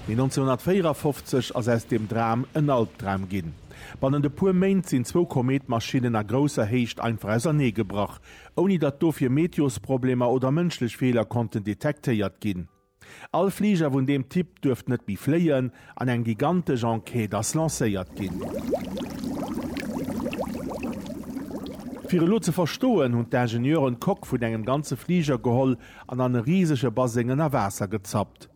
Mee 1954 ass aus deem Dram en Albdram ginn. Bannent e puer Méint sinn zwou Kometmaschinnen a grousser Héicht einfach ausernee gebrach, ouni datt dofir Meteosproblemer oder mënschlech Feeler konnten detektéiert ginn. All Fliger vun deem Typ duerft net méi fléien an eng gigantesch Enquête ass lancéiert ginn. Fir elo ze verstoen, hunn d'Ingenieuren d'Coque vun engem ganze Fliger geholl an an e risege Baseng ënner Waasser gezappt.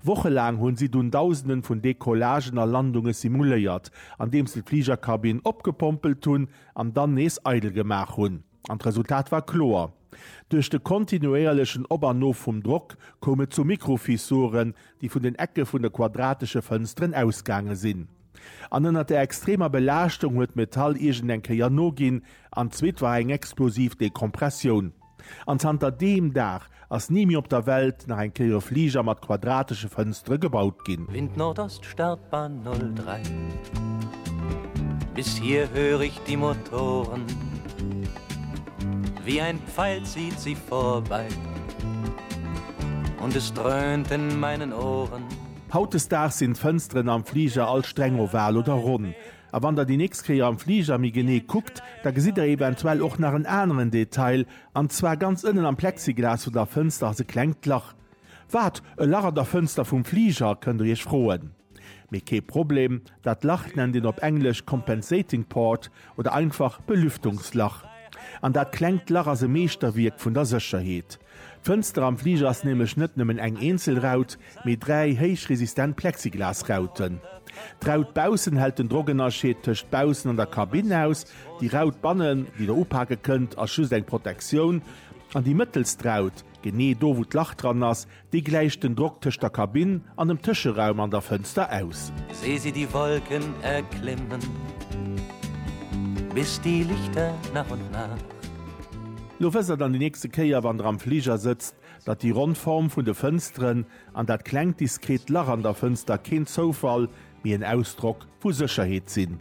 Wochelaang hunn si dunn Dausenden vun Decollagen a Landunge simuléiert, andeems se d'Fligerkabinn opgepompelt hunn an dann nees eidel gemaach hunn. An d'Resultat war kloer, Duerch de kontinuéierlechen Op an Of vum Drock koum et zu Mikrofissuren, déi vun den Ecke vun de quadratesche Fënsteren ausgaange sinn. An ënner der extremer Belaaschtung huet d'Metall iergendeng Kéier noginn, an d'zweet war eng explosiv Dekompressioun. An zanter deem Dag ass ni méi op der Welt nach eng Kéier e Fliger mat quadratesche Fënstere gebaut ginn. Wind Nordost Startbahn 03 Bis hier hör ich die Motoren Wie ein Pfeil zieht sie vorbei Und es dröhnt in meinen Ohren. Hautdesdaags sinn d'Fënsteren am Fliger all streng oval oder ronn. A wann der déi nächst Kéier am Fliger méi genee kuckt, da gesitt der eventuell och nach en aneren Detail, an zwar ganz ënnen am Plexiglas vun der Fënster ass e klengt Lach. Wat? E Lach an der Fënster vum Fliger? kënnt der iech froen. Mee kee Problem, dat Lach nennt een op Englesch Compensating Port oder einfach Belüftungslach. An dat klengt Lach ass e Meeschterwierk vun der Sécherheet. D'Fënster am Fliger ass nämlech net nëmmen eng eenzel Raut, mee dräi héichresistent Plexiglasrauten. D'Raut baussen hält den Drockënnerscheed tëscht baussen an der Kabinn aus, déi Raut bannen, déi Der upake kënnt, ass just eng Protektioun, an déi mëttelst Raut, genee do wou d'Lach dran ass, déi gläicht den Drock tëscht der Kabinn an dem Tëscheraum an der Fënster aus. Seh sie die Wolken erklimmen, bis die Lichter nach und nach. Lo wësst der dann déi nächste Kéier, wann der am Fliger sëtzt, datt déi ronn Form vun de Fënsteren an dat klengt diskret Lach an der Fënster keen Zoufall, mee en Ausdrock vu Sécherheet sinn.